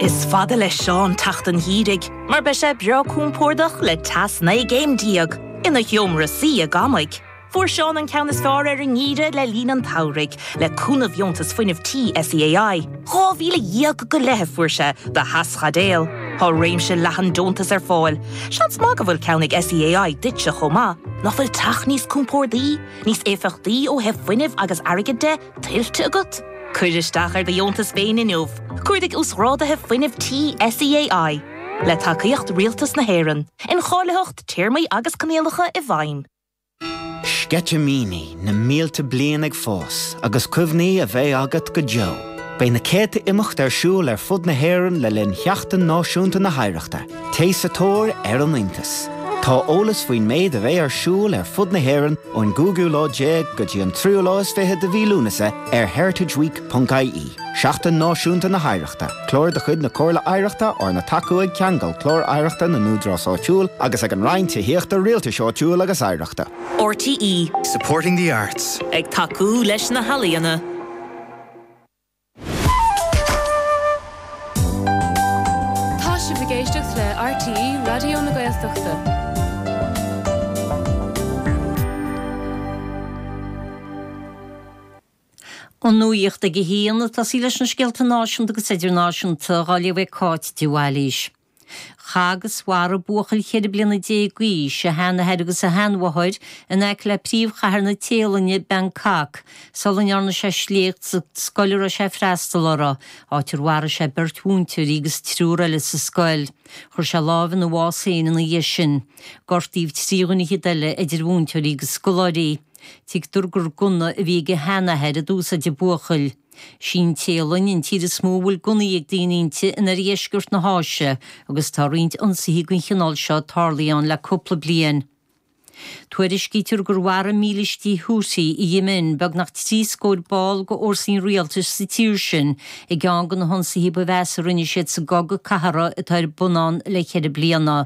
Is fada le Seán teacht an gheimhridh mar beidh sé breá compordach le teas naoi gcéim déag ina sheomra suí i gcónaí. Fuair Seán an ceann is fearr ar an ngeimhreadh le linn an tsamhraidh le cúnamh Dheontas Fuinnimh Tí SEAI. Dhá mhíle dhéag go leith a fuair sé do Theaschaidéal. Tá réimse leathan deontas ar fáil. Seans maith go bhfuil ceann ag SEAI duitse chomh maith. Nach bhfuil teach níos compordaí, níos éifeachtaí ó thaobh fuinnimh agus airgid de? tuillte agat? Cuir isteach ar do dheontas féin inniu, Cuardaigh Uasghrádaithe Fuinnimh Tí SEAI, le tacaíocht Rialtas na hÉireann, Incháilitheacht, Téarmaí agus Coinníollacha i bhfeidhm. Sceitimíní, na mílte bliain ag fás agus cuimhní a bheidh agat go deo. Beidh na céadta imeacht ar siúl ar fud na hÉireann le linn Sheachtain Náisiúnta na hOidhreachta. Téigh sa tóir ar an iontas. Tá eolas faoin méid a bheidh ar siúl ar fud na hÉireann ón gcúigiú lá déag go dtí an tríú lá is fiche de mhí Lúnasa ar heritageweek.ie, Seachtain Náisiúnta na hOidhreachta, clár de chuid na Comhairle Oidhreachta arna tacú ag Ceangal Clár Oidhreachta na nÚdarás Áitiúil agus ag an Roinn Tithíochta, Rialtais Áitiúil agus Oidhreachta. RTÉ. Supporting the arts. Ag tacú leis na healaíona. Tá sibh ag éisteacht le RTÉ Raidió na Gaeltachta. An nuacht ag a haon. Ag tosaí leis na scéalta náisiúnta agus idirnáisiúnta. Dhá léamh ag Cáit de Bhailís. Chaith agus mharaigh buachaill cheithre bliana déag d'aois a sheanathair agus a sheanmháthair in aice le príomhchathair na Téalainne, Bangkok, sula ndearna sé sléacht sa scoil a raibh sé ag freastal uirthi, áit ar mharaigh sé beirt mhúinteoirí agus triúr eile sa scoil. Chuir sé lámh ina bhás féin ina dhiaidh sin. Gortaíodh trí dhuine fhichead eile, idir mhúinteoirí agus scoláirí. Tuigtear gur gunna a bhí ag a sheanathair a d'úsáid an buachaill. Is í an Téalainn an tír is mó a bhfuil gunnaí ag daoine inti in oirdheisceart na hÁise agus tá roinnt ionsaithe den chineál seo tarlaithe ann le cúpla bliain. Tuairiscítear gur mharaigh mílístí Houthi i Yemen beagnach trí scór ball d'fhórsaí an rialtais sa tír sin i gceann de na hionsaithe ba mheasa a rinne siad sa gcogadh cathartha atá ar bun ann le cheithre bliana.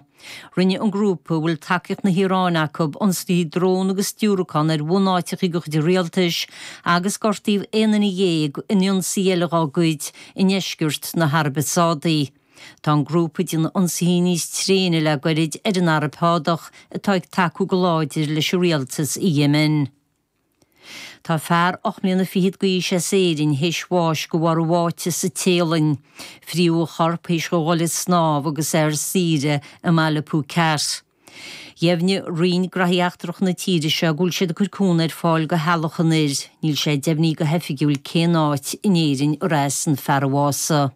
Rinne an grúpa a bhfuil tacaíocht na hIaráine acu ionsaithe drón agus diúracán ar bhunáiteacha de chuid an rialtais, agus gortaíodh aon duine dhéag in ionsaí eile dhá gcuid i ndeisceart na hAraibe Sádaí. Tá an grúpa ag déanamh ionsaithe níos tréine le gairid ar an Araib Shádach, atá ag tacú go láidir leis an rialtas i Yemen. Tá fear ocht mbliana fichead d'aois as Éirinn théis bháis go bharr a bháite sa Téalainn. Fríodh a chorp théis dho dhul ag snámh agus é ar saoire i mbaile Phuket. Dheimhnigh Roinn Gnothaí Eachtrach na tíre seo go bhfuil siad ag cur cúnamh ar fáil go theaghlach an fhir. Níl sé deimhnithe go hoifigiúil cén áit in Éirinn arb as an fear a bhásaigh.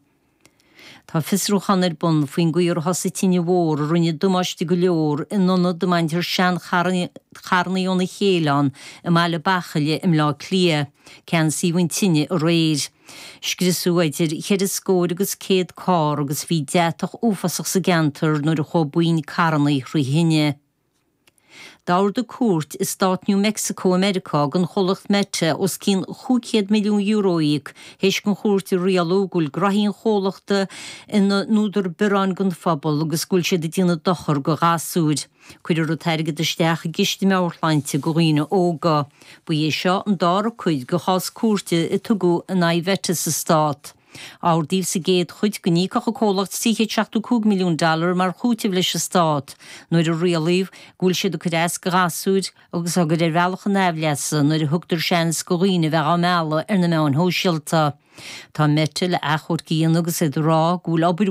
Tá fiosrúchán ar bun faoin gcaoi ar thosaigh tine mhór a rinne damáiste go leor in ionad a mbaintear seancharrannaí óna chéile ann i mBaile Bachaille i mBleá Cliath. Ceansaíodh an tine aréir. Scriosadh idir cheithre scóir agus céad carr agus bhí deatach uafásach sa gceantar nuair a chuaigh boinn carrannaí thrí thine. D'ordaigh Cúirt Stát New Mexico i Meiriceá don chomhlacht Meta os cionn €500 milliún a íoc, théis don chúirt a rialú go bhfuil gnothaí an chomhlachta ina n-údar bearráin don phobal agus go bhfuil siad ag déanamh dochair go ghasúir. Cuirfear an t-airgead isteach i gciste meabhairshláinte do dhaoine óga. Ba é seo an dara cuid de chás cúirte a tugadh in aghaidh Meta sa stát. Ordaíodh sa gcéad chuid go n-íocfadh an comhlacht 375 milliún dollar mar chúiteamh leis an stát nuair a rialaíodh go bhfuil siad ag cur as do ghasúir agus á gcur ar bhealach a n-aimhleasa nuair a thugtar seans go dhaoine a bheadh á mealladh ar na meáin shóisialta. Tá Meta le athchomharc a dhéanamh agus iad ag rá go bhfuil obair